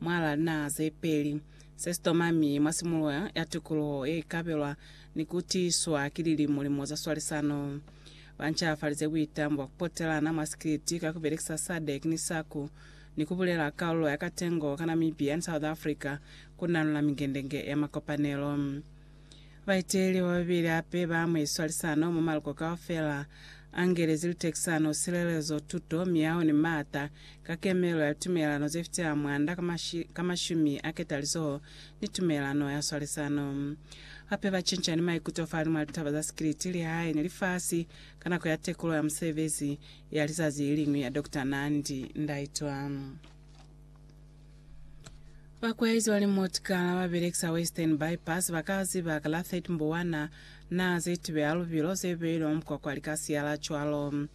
Mwa lana ze peli, se sitoma mi mwa simuluha ya tikuluho ye ikabelwa ni ku tiiswa ki lilimo-limo za swalisano. Ba ncafalize buitamo bwa ku potelana mwa sikiliti ka ku belekisa SADC ni SACU ni ku bulela kalulo ya katengo ka Namibia ni South Africa ku nanula mingendenge ya makopanelo. Baeteleli bababeli hape ba mwe swalisano mwa maluko kaufela a Ngelezi, lutekisano, silelezo, tuto, miyaho ni maata, ka kemelo ya litumelelano ze fitela mwanda ka mashumi a ketalizoho ni tumelelano ya swalisano. Hape ba cinca ni maikuto fahalimw'a litaba za sikiliti, lihae, ni lifasi ka nako ya tekulo ya musebezi ya lizazi leliñwi ya Doctor Nandi Ndaitwah. Bakweayezi ba limotgala ba belekisa Western Bypass ba ka ziba ka la 30 Mbuwana naa ze tibeha lubilo ze beilwe mwa mukwakwa li ka siyala cwalo.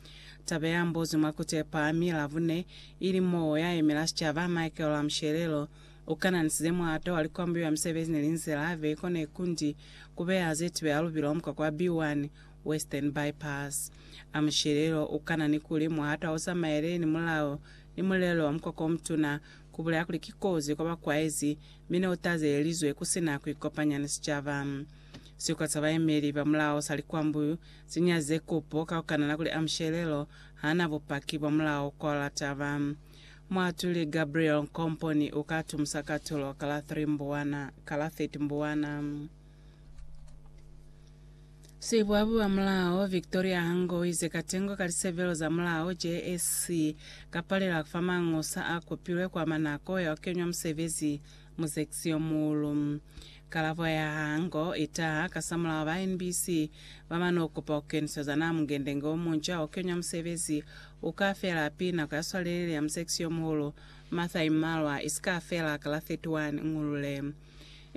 Taba ya mbuzwi mwa Kutepa, mi Labone, ili moo ya yemela sicaba Michael Ramushelelo, u kananisize muhato wa likwambuyo ya misebezi ni linzila ve kone kundi ku beha ze tibeha lubilo mwa mukwakwa wa B1, Western Bypass. Ramushelelo u kanani kuli muhato ha u zamaele ni mulao Ni mulelo wa mukwakwa omutuna, kubulela kuli ki kozi kwa bakwaezi, mi ne utazelelizwe kusina kuikopanya ni sicaba. Sikwa sa bayemeli ba mulao sa likwambu si nyazize kupo ka kukanana kuli Amushelelo hana bupaki bwa mulao kwa la taba. Muatuli Gabriel Nkomponi uka tumusa katulo ka la 3 Mbuwana, ka la 30 Mbuwana. Sibuabu ba mulao Victoria Hango o ize katengo ka lisebelo za mulao JSC ka palela fa mangosa a kopilwe kwa ama nako ya ku kenywa musebezi mu seksi yo muulu. Kalabo ya Hango i taha kasamulaho ba NBC ba mane ku kopa ku keniseza naa mungendenge o munca wa ku kenywa musebezi u ka fela api nako ya swalelele ya museksi yo muhulu, Martha Imalwa, i si ka fela ka la 31 Ngulule.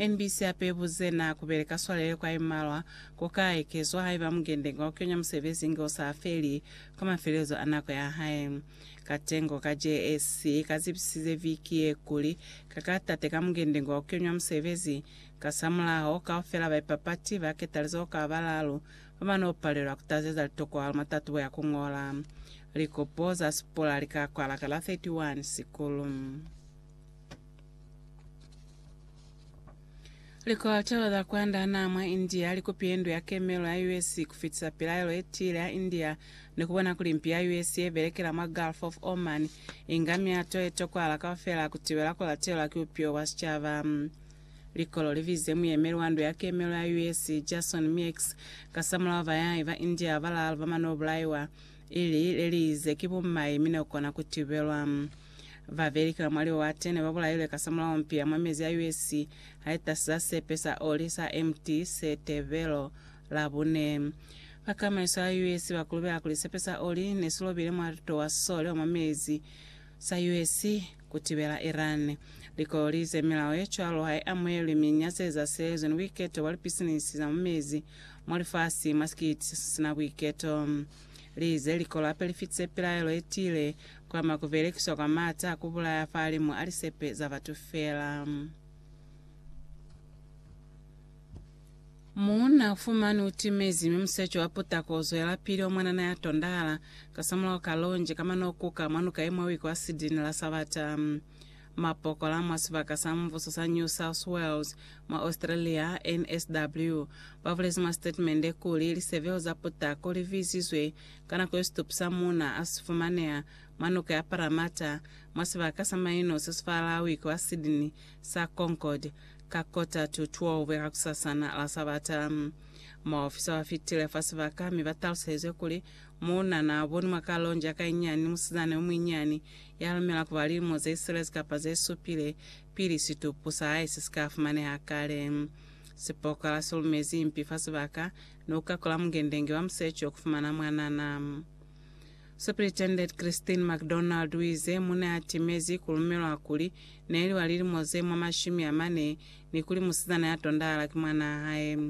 NBC hape ibuze na kubeleka swalele kwa imalwa ku ka ekezwa haiba mukendenga wa kuyonya musebezi inge u sa feli kwa mafelelezo a nako ya hae. Katengo ka JSC ka zibisize viki ye kuli ka ka tateka mukendenga wa kuyonywa musebezi. Kasamulaho, kaufela baipapati ba ketalizeho ka balaalu ba ba n'o palelwa ku tazeza litokwahalo mwa tatubo ya ku ñola. Likopo za sipula li ka kwala ka la 31 Sikulu. Likotelo za kwanda naa mwa India likupile ndu ya kemelo ya US kufitisa pilaelo yetiile ya India ni kubona kuli mpi ya US yebelekela mwa Gulf of Oman inga miato yetokwahala kaufela kutibela kulatelwa ki bupilo bwa sicaba. Likolo libize muyemeli wa ndu ya kemelo ya US, Jason Meeks, kasamulaho bayahi ba India balaalu bamanobulaiwa, ili leliize ki bumai mi nekukona kutibelwa. Ba belikela mwa liwate ne ba bulailwe kasamulaho mpi ya mwa mezi ya US ha i tasiza sepe sa oli sa MT Setebelo Labune. Ba kamaiso ya US ba kulubela kuli sepe sa oli ne si lobile mwalito wa sole wa mwa mezi sa US ku tibela Iran. Likololi ze milao ye cwalo ha i amuhelwi mi nya ze zashelezwi ni buiketo bwa lipisinisi za mwa mezi mwa lifasi mwa sikiti se si na buiketo. Lize likolo hape li fitise pilaelo ye tiile kwama ku belekiswa kwa maata a ku bulaya fahalimu a lisepe za batu feela. Muuna ufumani utimezi mi musecho wa putako uzwelapili omwanana yatondahala kasamulaho ka lonje kamana ukuka mwa nuka imwe wiki wa sidini la Sabata. Mapokola mwa sibaka sa mubuso sa New South Wales, mwa Australia, NSW, babulezi mwa sitatimende kuli lisebeho za putako liviizizwe ka nako yo situpu sa muuna asifumaneha mwa noka ya Parramatta, mwa sibaka sa maino sesifala wiki wa Sydney sa Concord, ka kota to 12 ya kakusasana la Sabata. Maofisa bafitile fa sibaka mi batalusezwe kuli Mo na n'a boni mwa kalonji ya ka i nyani musizana yo muinyani ya lumela ku ba lilimo ze silezi kapa ze supile pili situpu sa hae se si ka fumaneha kale. Sipokola si lumezi impi fa sibaka, ne u kakula mungendenge wa museco ku fumana mwanana. Superintendent Christine McDonald u ize, Mu ne a timezi ku lumelwa kuli ne li wa lilimo ze mwa mashumi a mane ni kuli musizana ya tondahala ki mwanaa hae.